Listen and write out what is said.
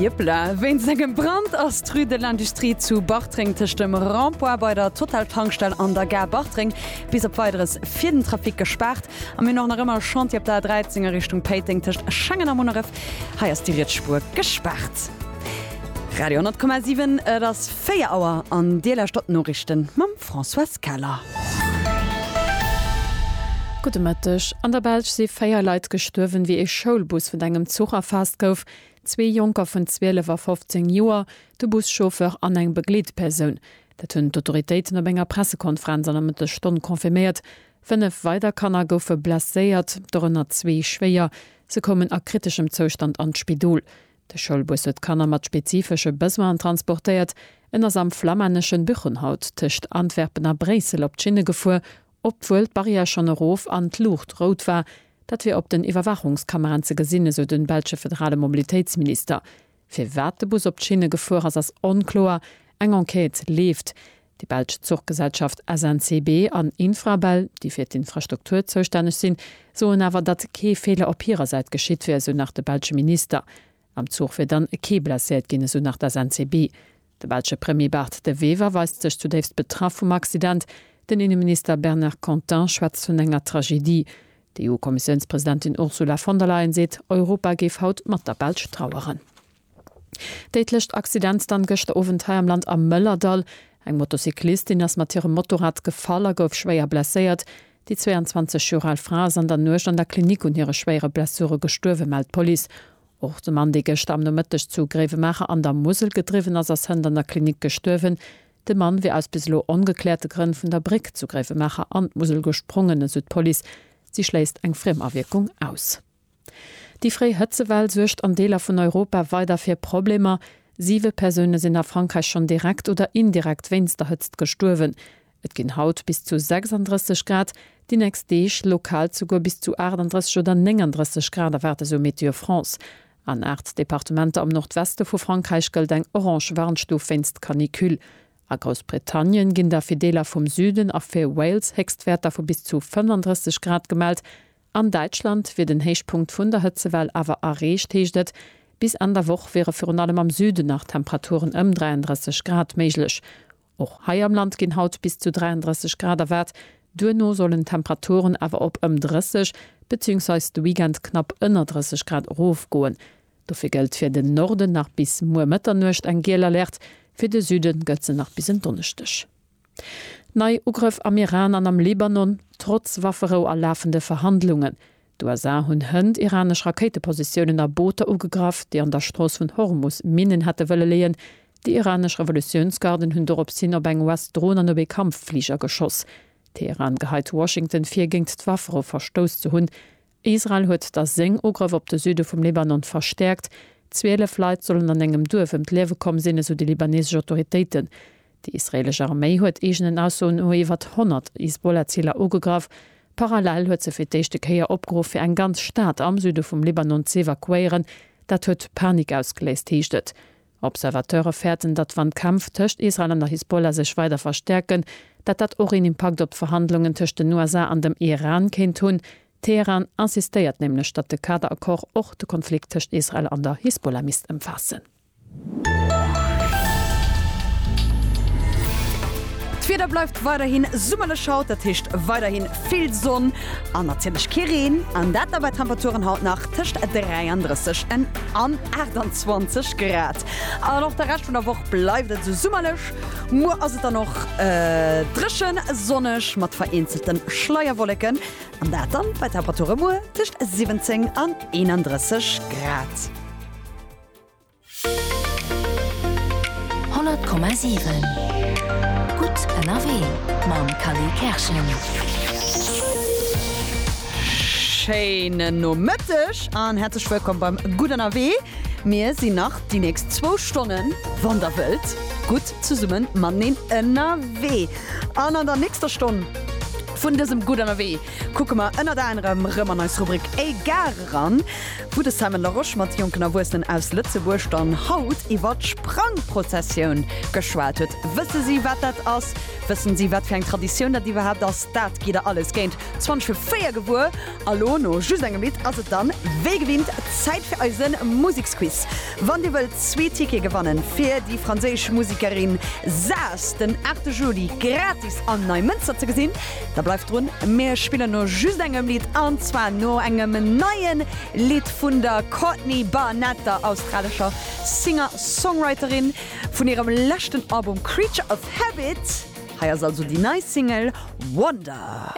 Jippla, Wéinst engem Brand ass d'Rue de l'Industrie zu Bartreng tëscht dem Rond-point bei der Total-Tankstell an der Gare Bartreng bis op Weideres fir den Trafic gespaart. A mir hunn och nach ëmmer Chantier op der A13 a Richtung Péiteng tëscht Schengen a Munneref. Hei ass déi riets Spuer gespaart. Radio 10,7, Et ass 4 Auer an Dir lauschtert d'Noriichten mam. D'Françoise Keller. Gudde Mëtteg. An der Belsch si véier Leit gestuerwen, wéi ee Schoulbus vun engem Zuch erfaasst gouf. Zwee Jonker vun 12 a 15 Joer, de Buschauffeur an eng Begleetpersoun. Dat hunn d'Autoritéiten op enger Pressekonferenz an der Mëttesstonn confirméiert. Fënnef weider Kanner goufe blesséiert, dorënner zwee schwéier. Se koumen a kriteschem Zoustand an d'Spidol. De Schoulbus huet Kanner mat spezifesche Besoinen transportéiert. En ass am flammänneschen Buchenhout tëscht Antwerpen a Bréissel op d'Schinne gefuer, obwuel d'Barrière schonn erof an d'Luucht rout war. Dat wier op den Iwwerwaachungskameraen ze gesinn, esou de belsche federale Mobilitéitsminister. Firwat de Bus op d'Schinne gefuer ass, ass onkloer. Eng Enquête leeft. Déi belsch Zuchgesellschaft SNCB an Infrabel, déi fir d'Infrastruktur zoustänneg sinn, soen awer, datt kee Feeler op hirer Säit geschitt wier, esou nach de belsche Minister. Am Zuch wier dann kee blesséiert ginn, esou nach d'SNCB. De belsche Premier Bart De Wever weist sech zudéifst betraff vum Accident. Den Inneminister Bernard Content schwätzt vun enger Tragedie. D'EU-Kommissiounspresidentin Ursula von der Leyen seet, Europa géif haut mat der Belsch traueren. Déidlecht Accident dann gëschter Owend hei am Land am Mëllerdall. Eng Motocyclistin ass mat hirem Motorrad gefall a gouf schwéier blesséiert. Déi 22 Joer al Fra ass an der Nuecht an der Klinik un hire schwéiere Blessure gestuerwen, mellt d'Police. Och de Mann, dee gëschter am Nomëtteg zu Gréiwemaacher an der Musel gedriwwen ass, ass hënt an der Klinik gestuerwen. De Mann wier aus bis elo ongekläerte Grënn vun der Bréck zu Gréiwemaacher an d'Musel gesprongen, esou d'Police. Si schléisst eng Friemawierkung aus. Déi fréi Hëtzewell suergt an Deeler vun Europa weider fir Problemer. Siwe Persoune sinn a Frankräich schonn direkt oder indirekt wéinst der Hëtzt gestuerwen. Et ginn haut bis zu 36 Grad, déi nächst Deeg lokal zuguer bis zu 38 oder 39 Grad erwaart, esou Météo France. An aacht Departementer am Nordweste vu Frankräich gëllt eng orange Warnstuf wéinst Canicule. A Groussbritannien ginn da fir Deeler vum Süden a fir Wales Héchstwäerter vu bis zu 35 Grad gemellt. An Däitschland wier den Héichpunkt vun der Hëtzewell awer erreecht, heescht et. Bis Enn der Woch wiere virun allem am Süden nach Temperaturen ëm 33 Grad méiglech. Och hei am Land ginn haut bis zu 33 Grad erwaart, duerno sollen d'Temperaturen awer op ëm 30 beziéungsweis de Weekend knapp ënner 30 Grad erofgoen. Dofir gëllt fir den Norden nach bis muer Mëtternuecht eng giel Alerte, fir de Süde gëllt se nach bis en Donneschdeg. Nei Ugrëff am Iran an am Libanon, trotz Wafferou a lafende Verhandlungen. D'USA hunn hënt iranesch Rakéitepositiounen a Booter ugegraff, déi an der Strooss vun Hormus Minnen hätte wëlle leeën. Déi iranesch Revolutiounsgarden hunn dorops hin op eng US-Dron an op ee Kampffliger geschoss. Teheran geheit Washington vir, géint d'Wafferou verstouss ze hunn. Israel huet da seng Ugrëff op de Süde vum Libanon verstäerkt. Zwielef Leit sollen an engem Duerf ëm d'Liewe komm sinn, esou déi libanesesch Autoritéiten. Déi israeelesch Arméi huet eegenen Aussoen no iwwert 100 Hisbollah-Ziler ugegraff. Parallel huet se fir d'éischte Kéier opgeruff, fir eng ganz Stad am Süde vum Libanon z'evakuéieren. Dat huet Panik ausgeléist, heescht et. Observateure fäerten, datt wann d'Kämpf tëscht Israel an der Hisbollah sech weider verstäerken, dat dat och een Impakt op d'Verhandlungen tëscht den USA an dem Iran kéint hunn. Teheran insistéiert nämlech, datt de Kader-Accord och de Konflikt tëscht Israel an der Hisbollah misst ëmfaassen. D'Wieder bleift weiderhi summerlech haut, dat heescht weiderhi vill Sonn an natierlech kee Reen. An dat da bei Temperaturen haut nach. tëscht 33 en an 28 Grad an och de Rescht vun der Woch bleift et esou summerlech. Muer ass et dann och dréchen, sonneg mat vereenzelte Schleierwolleken an dat dann bei Temperature muer tëscht 17 an 31 Grad. 100,7 Gutt ënnerwee mam Kally Kerschen. Schéinen Nomëtteg an häerzlech wëllkomm beim Gutt ënnerwee. Mir sinn nach déi nächst zwou Stonnen, wann der wëllt, gutt zesummen mateneen ënnerwee. An an der nächster Stonn vun dësem Gutt ënnerwee kucke mer ënnert anerem rëm an eis Rubrik E Gare eran, wou de Simon Larosche mat jonken Erwuessenen aus Lëtzebuerg dann haut iwwer d'Sprangprozessioun geschwat huet. Wësse si, wat dat ass? Wëssen si, wat fir eng Traditioun dat iwwerhaapt ass? Dat gitt der alles géint 20 vu 4 gewuer. A lo, no just engem Lidd, ass et dann wéi gewinnt Zäit fir eise Museksquiz. Wann dir wëllt zwee Tickete gewannen, fir déi franséisch Musekerin Saas den 8 Juli gratis an Neimënster ze gesinn, Da bleift drun, mir spillen no just engem Lidd an zwar no engem neie Lidd vun der Courtney Barnett, der australescher Singer-Songwriterin vun hirem leschten Album Creature of Habit. Hei ass also déi nei Single Wonder.